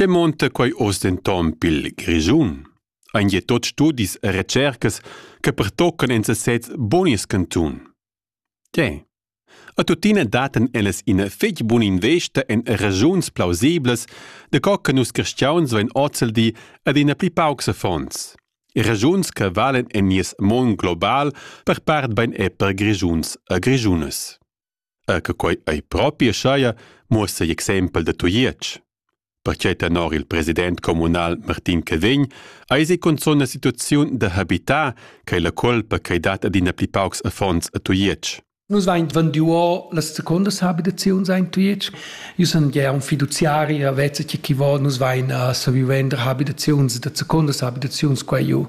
Che monta quei oz denton pil Grischun? Ein je tot studis e recercas che pertoccan en sesez bonies cantun? Tge? A tuttina daten ellas ina fetg buna investa en regiuns plausiblas, de co che nus cristians vein ozeldi ad ina pli paucs affons. Regiuns che valen en nies mon global per part bein è per Grischuns a Grischunas. er che quei ei propi aschia, muossa igl exempel da Tujetsch. Perquei tenor il president communal Martin Cavegn eisi cunzun la situaziun da habitar ch'ei la colpa ch'ei dat adina pli paucs affons a Tujetsch. Nus vein vendiu las secondas habitaziuns ein Tujetsch Io sun gia un fiduziari e vezza che chi vo nus vain a saviu vender abitaziuns da secondas abitaziuns qua giu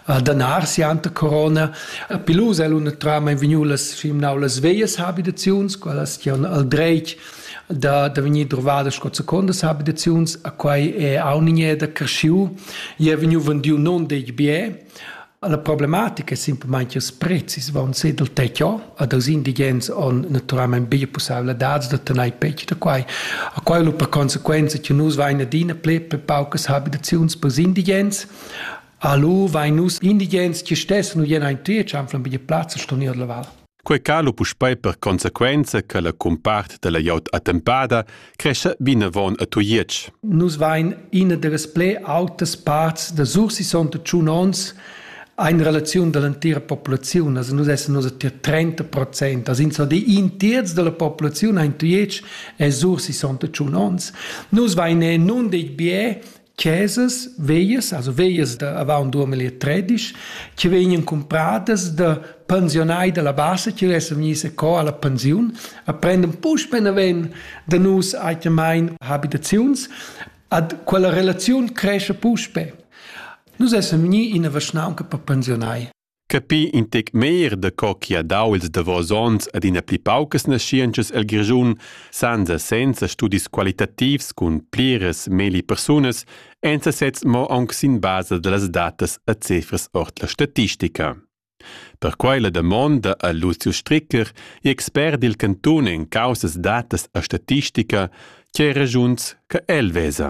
a Danar si ante Corona. A Pilus el una trama in vegniu las simnau las veias abitaziuns, qualas chi on al dreit da, da vegnir drovada sco secondas abitaziuns, a quai è aunighe da cresciu. Ia è vegniu vendiu non deg bie, La problematica è simplamain ch'ils prezis van si dal tetto ad els indigens on naturalmain bia pussaivladads da tanair petg da quai. A quai lu per consequenza che nus vain adina pli per paucas habitaziuns per indigens. Alu vain nus indigens che stessan u jena in tria, chanflan bia plazza ston ir alla val. Quei cala puspei per consequenza che la cumpart dalla glieud attempada crescha vinavon a Tujetsch. Nus vein ina dallas pli autas parts da Sursisonta tschun onns in relaziun dall'entira populaziun. Also nus essen nus tier 30 Prozent. Also so die in terz della populaziun in Tujetsch è Sursisonta tschun onns. Nus vein nun dei bie chesas veias, also veias da avant 2013, che vegnan compradas da pensionai dalla bassa che vessen vegnis a co alla pensiun, a prenden puspe naven da nus aitamain habitaziuns, ad quella relaziun cresce puspe. Nus essen vegni in a vaschnaunca per pensionai. Capì in tec meglier da co chi ha dau ils davos ons ad ina pli paucas naschientschas el Grischun senza senza studis qualitativs cun pliras megli persunas ein sesezs mo aunc sin basa dallas datas e cifras ord la statistica. Per quei la damonda a Lucio Stricker, expert dil cantun en caussas datas e statistica, che regiuns che el vesa.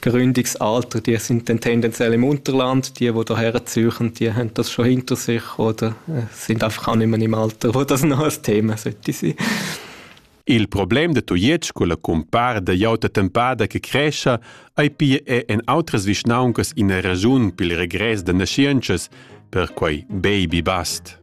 gründiges Alter, die sind dann tendenziell im Unterland, die, die hierher ziehen, die haben das schon hinter sich oder äh, sind einfach auch nicht mehr im Alter, wo das noch ein Thema sollte sein. Il problem de Tujetsch con la compar da iauta tempada che crescia ei pia è en outras vischnauncas ina ragiun pil regress da naschientschas per quei baby bust.